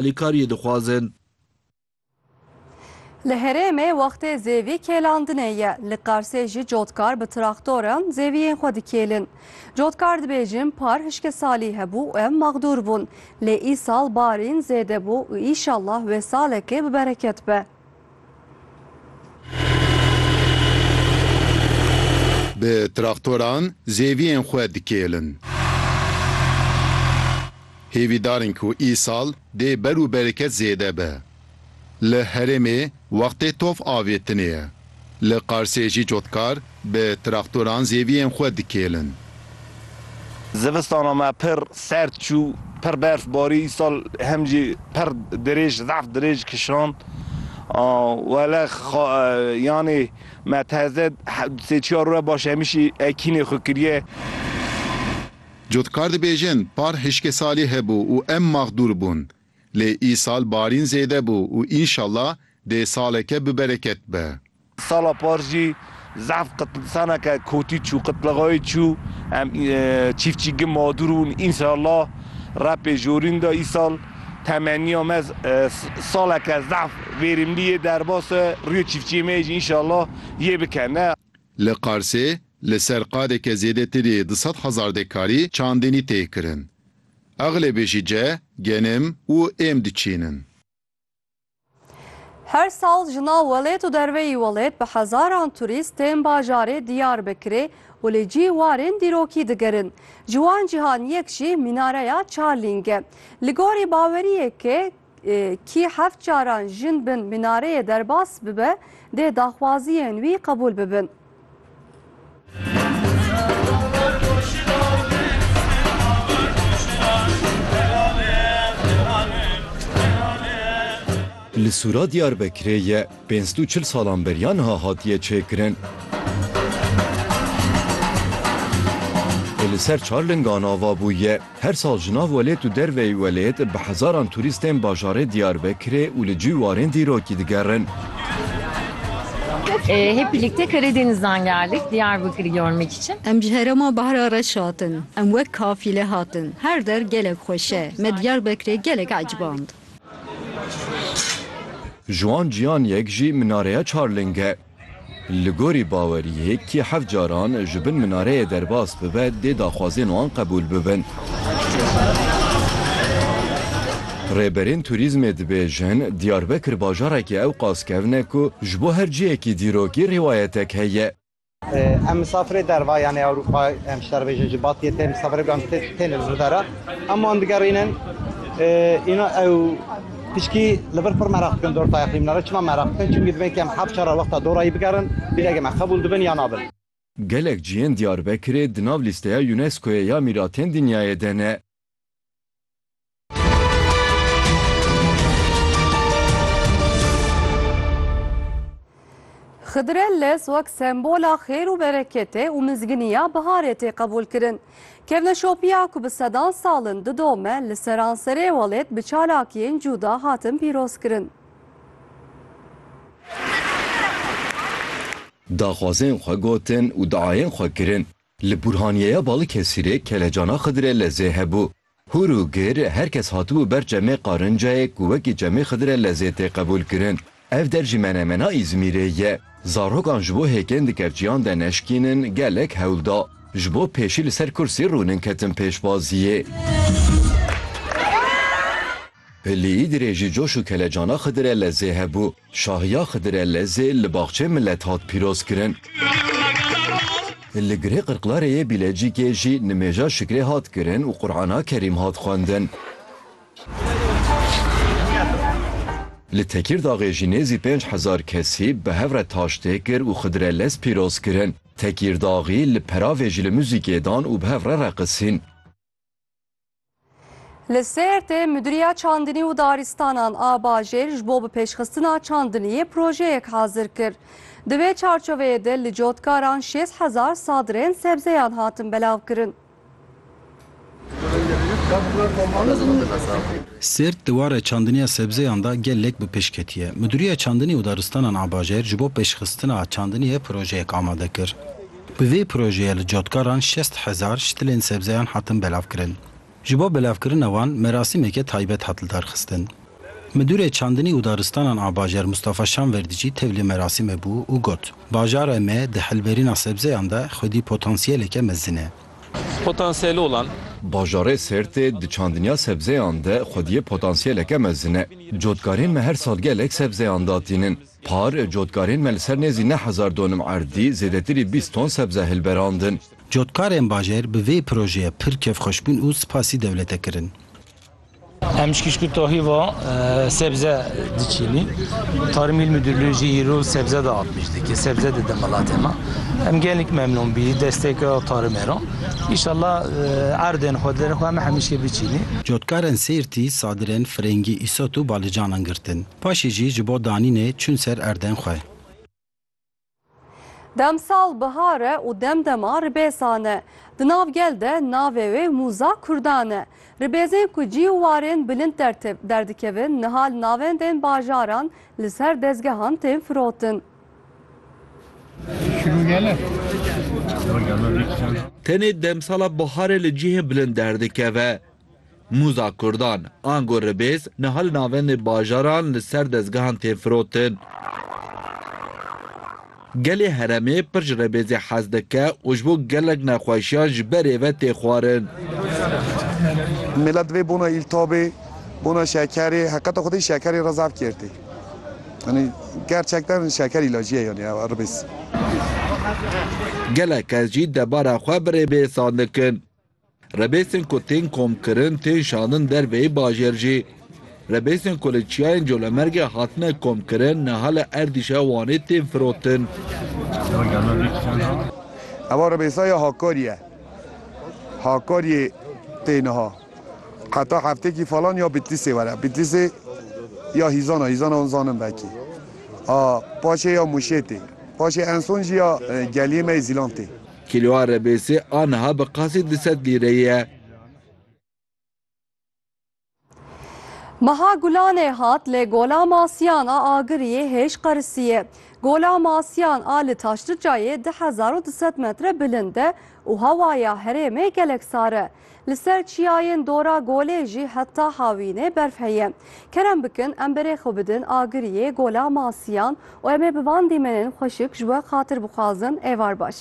alîkariyê dixwazin. Li herêmê wextê zêvî kêlandinê ye. Li Qarsê jî cotkar bi traktoran zêviyên xwe dikêlin. Cotkar dibêjin par hişkê salî hebû û em maxdûr bûn. Lê îsal barîn zêde bû û îşallah wê salekê bi bereket be. Bi traktoran zêviyên xwe dikêlin. Hêvî darin ku îsal dê ber û bereket zêde be. Li herêmê wextê tof avêtinê ye. Li Qarsê jî cotkar Bi traktoran zêviyên xwe dikêlin. Zivistana me pir serd çû, pir berf barî, îsal hem jî pir dirêj, zaf dirêj kişand. Wele yanê me teze sê çar roj baş hemîşî ekînê xwe kiriye. Cotkar dibêjin, par hişkê salî hebû û em maxdûr bûn. Lê îsal barîn zêde bû û înşallah dê saleke bibereket be. Sala par jî zehf qitlisaneke kotî çû, qitlixayî çû. Em çîfçîgin madûr bûn. Înşalla re pêşorîn de îsal temenniya me saleke zehf vêrîmlî yê derbas e. Rûyê çîfçîyê me yê jî înşalla yê bike ne. Li Qarsê li ser qadeke zêdetirî du sed hezar dekarî çandinî tê kirin. Exlebê jî ce, genim û êm diçînin. Her sal ji nav welêt û derveyî welêt bi hezaran turîst tên bajarê Diyarbekirê û li cî warên dîrokî digerin. Ji wan cîhan yek jî Mînareya Çarlîng e. Li gorî baweriyekê kî heft caran jin bin mînareyê derbas bibe dê daxwaziyên wî qebûl bibin. Li Sûra Diyarbekirê ye pênc û çil salan beriya niha hatiye çêkirin. Li ser çar lingan ava bûye. Her sal ji nav welêt û derveyî welêt bi hezaran turîstên bajarê Diyarbekirê û li cî warên dîrokî digerin. Em ji herêma Bahra Reş hatin. Em wek kafîle hatin. Her der gelek xweş e. Me Diyarbekirê gelek eciband. Ji wan cîyan yek jî minareya Çarling e. Li gorî baweriyê kî heft caran ji bin minareyê derbas bibe dê daxwazên wan qebûl bibin. Rêberên turîzmê dibêjin, Diyarbekir bajarekî ewqas kevn e ku ji bo her cihekî dîrokî rîwayetek heye. Em misafirê derva yanê Ewropa em ji te re bêjin ji Batiyê tê misafirê ku em têne li vir de re em wan digerînin îna ew Piştî li vir pir meraq dikin dor tayaqlî min re. Çima meraq dikin? Çimkî divên kem heft çar re wexta dorayî bigerin, bîregê me qebûl dibin ya na bin. Gelek cihên Diyarbekirê di nav lîsteya UNESCO'yê ya Mîratên Dinyayê de ne. Xidirelles wek sembola xêr û bereketê û mizginiya biharê tê qebûlkirin. Kevneşopiya ku bi sedan sal in didome li seranserê welêt bi çalakiyên cûda hatin pîrozkirin. Daxwazên xwe gotin û diayên xwe kirin. Li Burhaniyeya Balıkesirê kelecana Xidirellezê hebû. Hûr û gir, her kes hatibû ber çemê Qarincayê ku wekî çemê Xidire lezê tê qebûlkirin. Ev der jî menemena Îzmîrê ye. Zarokan ji bo hêkên di kerçiyan de neşkînin gelek hewl da. Ji bo pêşî li ser kursî rûnin ketin pêşbaziyê. Pilî dirêjî coş û kelecana Xidire lezê hebû. Şahiya Xidire Lezê li Baxçeyê Milet hat pîrozkirin. Li Girê Qirqlarê yê Bîlecîkê jî nimêja şikrê hat kirin û Qur'ana Kerîm hat xwendin. Li Tekîrdaxê jî nêzî pênc hezar kesî bi hev re taş tê kir û Xidire Lez pîroz kirin. Tekîrdaxî li Peravê jî li muzîkê dan û bi hev re reqisîn. Li Sêrtê Mudiriya Çandinî û Darîstanan a Bajêr ji bo bi pêşxistina çandiniyê projeyek hazir kir. Di vê çarçoveyê de li cotkaran şêst hezar sadirên sebzeyan hatin belavkirin. Sêrt di warê çandiniya sebzeyan de gelek bi pêş ketiye. Mudiriya Çandinî û Daristanan a Bajêr ji bo pêşxistina çandiniyê projeyek amade kir. Bi vê projeyê li cotkaran şest hezar ştilên sebzeyan hatin belavkirin. Ji bo belavkirina wan merasîmeke taybet hat lidarxistin. Midûrê Çandinî û Daristanan a Bajar Mustafa Şanverdî jî tevlî merasîmê bû û got, Bajara me di hilberîna sebzeyan de xwedî potansiyeleke mezin e. Potansiyel olan. Bajarê Sêrtê di çandiniya sebzeyan de xwediyê potansiyeleke mezin e. Cotkarên me her sal gelek sebzeyan datînin. Par, cotkarên me li ser nêzî neh hezar donim erdî, zêdetirî bîst ton sebze hilberandin. Cotkarên bajêr bi vê projeyê pir kêfxweş bûn û spasî dewlete kirin. Em ji kişkûtahî ve sebze diçînîn. Tarmîl Midûrlû jî îro sebze de hat pêşdikir, sebze dide miletê me. Em gelek memnûn bûyî destpêka tarmê re. Îşallah erdên xwe di derê xwe em hemîşê biçînîn. Cotkarên Sêrtî, Sadirên, Firengî, Îsot û Balicanan girtin. Paşê jî ji bo danînê çûn ser erdên xwe. Demsal bihar e û dem dema ribêsan e. Di nav gel de navê wê Mûza Kurdan e. Ribêzên ku cî û warên bilind derdikevin niha li navendên bajaran li ser dezgehan tên firotin. Tenê demsala biharê li cihên bilind derdikeve. Mûza kurdan, ango ribêz, niha li navendê bajaran li ser dezgehan tên firotin. Gelê heremê pir ji rebêzê hez dike û ji bo gelek nexweşiyan ji berê ve tê xwarin. Mêla divê bona îltabê, bona şekerê, heqeta xwedê şekerê re zaf kêrtê. Yanî gerçekten şeker îlacî ye yanî ew ribêz. Gelek kes jî debara xwe bi rêbêsan dikin. Rebêsên ku tên komkirin tên şandin derveyî bajêr jî. Rebêsên ku li Çiyayên Colemergê hatine komkirin niha li Erdîşa Wanê tên firotin. Eva rebêsa ya Hakarî ye. Hakarî tê niha. Heta heftekî falan ya Bitlîsê were. Bitlîsê ya Hîzan e. Hîzan hûn zanin vekî. A paşê ya Mûşê tê. Paşê en son jî ya geliyê me yê Zîlan tê. Kîloa rebêsê a niha bi qasî du sed lîreyê ye. Meha Gulanê hat lê Gola Masiyan a Agiriyê hêj qerisiyê. Gola Masiyan a li Taşlicayê du hezar û du sed metre bilind e û hewaya herêmê gelek sar e. Li ser çiyayên dora golê jî heta hawînê berf heye. Kerem bikin em berê xwe bidin agiriyê gola masiyan û em ê bi van dîmenên xweşik ji we xatir bixwazin êvar baş.